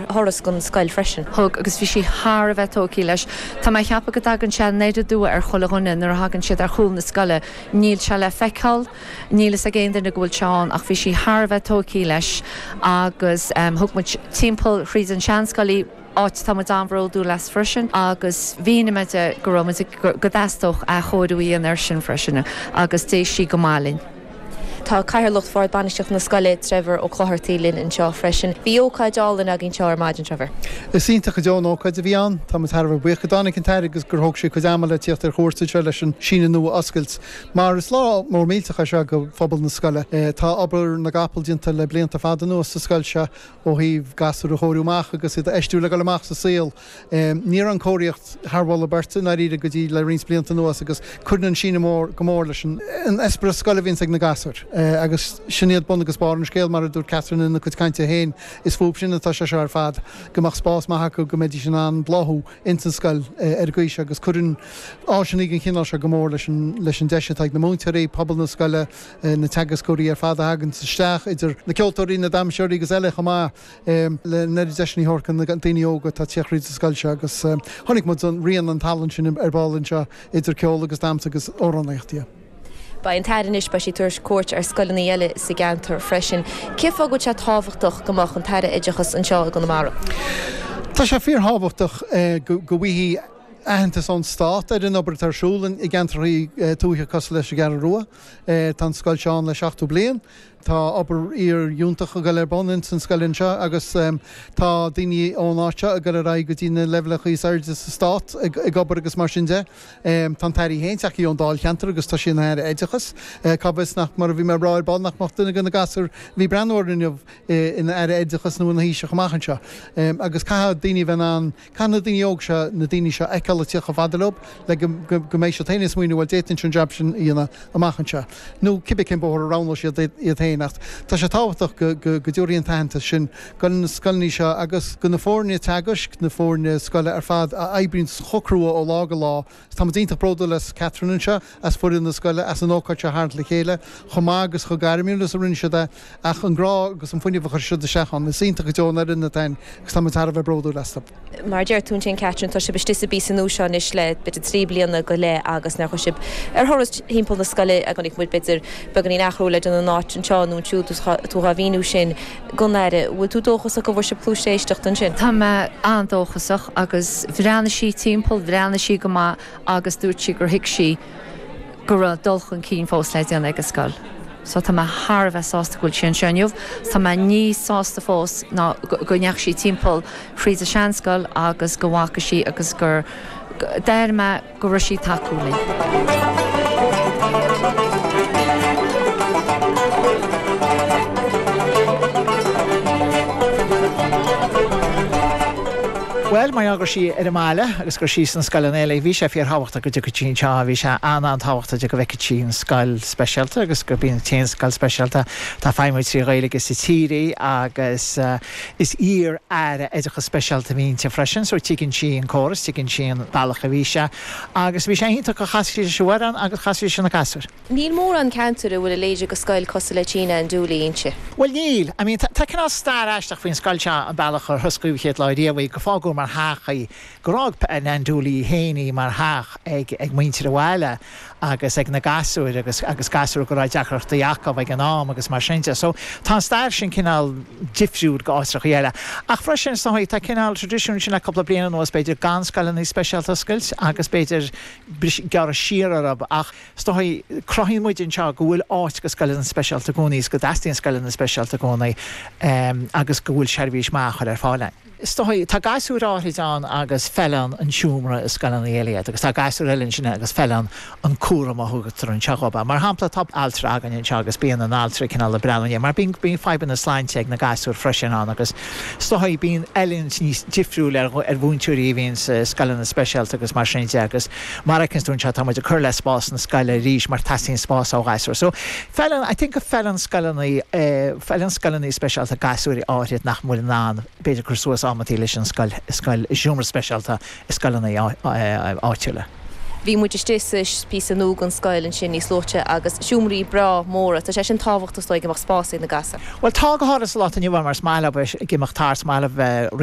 thuras gon scoil freisin. Thug, agus bhí sí thar a bheith tógtha leis. Tá mé a cheapadh go dtagann sé aniar aduaidh ar chuile dhuine nuair a thagann siad ar chúl na scoile. Níl sé le feiceáil, níl fhios ag aon duine go bhfuil sé ann, ach bhí sí thar a bheith tógtha leis agus thug muid timpeall thríd an seanscoil í, áit atá muid an-bhródúil as freisin agus mhínigh mé di go raibh muid ag, go dteastódh athchóiriú a dhéanamh air sin freisin agus d'éist sí go maith linn. Tá Cathaoirleach Bhord Bainistíochta na Scoile, Trevor Ó Clochartaigh linn anseo freisin. Bhí ócáid álainn againn anseo ar maidin, Trevor. Is iontach go deo an ócáid a bhí ann. Táimid thar a bheith buíoch go dtáinig an tAire agus gur thóg sí cuid ama le tíocht ar chuairt anseo leis an síneadh nua a oscailt. Mar is lá mór millteach é seo go phobal na scoile. Tá obair na gcapall déanta le blianta fada anuas sa scoil seo ó thaobh gasúir a chóiriú amach agus iad a fheistiú le dul amach sa saol. Ní raibh an chóiríocht thar mholadh beirte i ndáiríre go dtí le roinnt blianta anuas agus cuireann an síneadh nua go mór leis an eispéireas scoile a bhíonns ag na gasúir agus sin iad bun agus barr an scéil mar a dúirt Catherine ina cuid cainte féin is fúb sin atá sé seo ar fad go mbeadh spás maith acu go mbeidís in ann bláthú ins an scoil ar an gcaoi seo agus cuireann áiseanna den chineál seo go mór leis an deis atá ag na múinteoirí, pobal na scoile, na teagascóirí ar fad a thaganns isteach idir na ceoltóirí, na damseoirí agus eile chomh maith. é le n-oiread deiseanna a thabhairt go na daoine óga atá ag teacht thríd an scoil seo agus chonaic muid an rian an tallann sin ar ball anseo idir ceol agus damhsa agus amhránaíocht yeah. Beidh an tAire anois, beidh sí ag tabhairt cuairt ar scoileanna eile sa gceantar freisin. Cé fáth go bhfuil sé tábhachtach go mbeadh an tAire Oideachais anseo i gConamara? Tá sé fíor-thábhachtach go bhfaighidh aitheantas ón Stát ar an obair atá ar siúl i gceantrachaí tuaithe cosúil leis an gCeathrú Rua. Tá an scoil seo ann le 70 bliain. Tá obair fhíor-fhiúntach ag dul ar bun ins an scoil anseo agus tá daoine ón áit seo ag dul ar aghaidh go dtí na leibhéalacha is airde sa stát ag obair agus mar sin de. Tá an tAire féin tagtha ón dáilcheantar agus tá sí ina hAire Oideachais. Cá bhfios nach, mar a bhí mé ag rá ar ball, nach mbeadh duine de na gasúir a bhí ag breathnú orainn inniu ina Aire Oideachais nó ina Thaoiseach amach anseo. Agus caithfidh daoine a bheith in ann. Caithfidh na daoine óga seo, na daoine seo a fheiceáil ag tíocht chomh fada leob le go mbeidh siad féin ag smaoineamh bhuel d'fhéadfainn an jab sin a dhéanamh amach anseo. Nó cibé cén bóthar a roghnóidh siad iad féin. Ach tá sé tábhachtach go dtabharfaí an t-aitheantas sin go na scoileanna seo agus go na foirne teagaisc, na foirne scoile ar fad a oibríonn chomh crua ó lá go lá, Táimid iontach bródúil as Catherine anseo, as foireann na scoile, as an ócáid seo a tharraingt le chéile chomh maith agus chomh gairmiúil is a rinne siad é, ach an grá agus an fuinneamh a chuir siad isteach ann. Is iontach go deo an fhoireann atá ann agus táimid thar a bheith bródúil astu. Mar a deir tú ansin Catherine, tá sibh istigh sa bpíosa nua seo anois le b'fhéidir trí bliana go leith agus nuair a chuaigh sibh ar thuras thimpeall na scoile chonaic muid b'fhéidir beagáinín athrú le déanamh in áit anseo nó ansiúd, tú dhá mhíniú sin. gon Aire. Bhfuil tú dóchasach go bhfuair sibh cluais éisteachta ansin? Tá mé an-dóchasach agus bhreathnaigh sí timpeall, bhreathnaigh sí go maith agus dúirt sí gur thuig sí go raibh dul chun cinn fós le déanamh ag an scoil. So tá mé thar a bheith sásta go bhfuil sí anseo inniu. Tá mé níos sásta fós ná go ndeachaigh sí timpeall thríd an seanscoil agus go bhfaca sí agus gur, déarfaidh mé. go raibh sí tacúil linn. Bhuel, mar gheall go raibh sí ar an mbaile agus go raibh sí sna scoileanna eile, bhí sé fíor thábhachtach go dtiocfadh sí anseo, bhí sé an-an-tábhachtach de go bhfeicfeadh sí an scoil speisialta agus gurb í an t-aon scoil speisialta atá ag feidhmiú trí Ghaeilge sa tír í agus, Is iar-Aire Oideachas Speisialta a bhí inti freisin so tuigeann sí an córas, tuigeann sí an bealach a bhí sé agus bhí sé iontach gur chas sí leis an bhfoireann agus chas sí leis na gasúir. Níl mórán ceantair a bhfuil a leithéid de scoil cosúil le Tigh Nan Dooley inti. Bhuel níl. I mean tá cineál stair aisteach faoin scoil seo an bealach ar hosclaíodh an chéad lá riamh í, gur fágadh mar theach í, Gur fhág Nan Dooley féin í mar theach ag muintir an bhaile agus ag na gasúir agus agus gasúir go raibh deacrachtaí acu ag an am agus mar sin de. So tá an stair sin cineál difriúil go áiteachaí eile. Ach freisin san tá cineál traidisiún sin le cúpla bliain anuas b'fhéidir gan scoileanna speisialta a oscailt agus b'fhéidir a bheith ag gearradh siar orthub ach san cruthaíonn muid anseo go bhfuil áit go scoileanna speisialta i gcónaí is go dteastaíonn scoileanna speisialta i gcónaí agus go bhfuil seirbhís maith á chur ar fáil ann. Is dóigh, tá gasúir áithrid ann agus feileann an seomra i scoileanna eile iad agus tá gasúir eile ansin agus feileann an cúram a thugtar anseo dhóibh. Mar shampla, tá altra againn anseo agus bíonn an altra ag cineál ag breathnú ina ndiaidh mar bíonn fadhbanna sláinte ag na gasúir freisin ann agus is dóigh, bíonn oiliúint níos difriúil ar mhúinteoirí a bhíonn i scoileanna speisialta agus mar sin de agus Mar a fheiceanns tú anseo tá muid ag cur le spás na scoile arís mar teastaíonn spás ó ghasúir. So feileann, I think go feileann scoileanna, feileann scoileanna speisialta gasúir áithrid nach bhfuil in ann b'fhéidir cur suas amanntaí leis an scoil, scoil, seomra speisialta i scoileanna áitiúla. Bhí muid istigh sa píosa nua gon scoil ansin níos luaithe agus seomraí breátha móra. Tá sé sin tábhachtach is dóigh go mbeadh spás ag na gasúir. Bhuel tá go háithrid sa lá atá inniu ann mar is maith leo bheith ag imeacht thart, is maith leo bheith ag rith,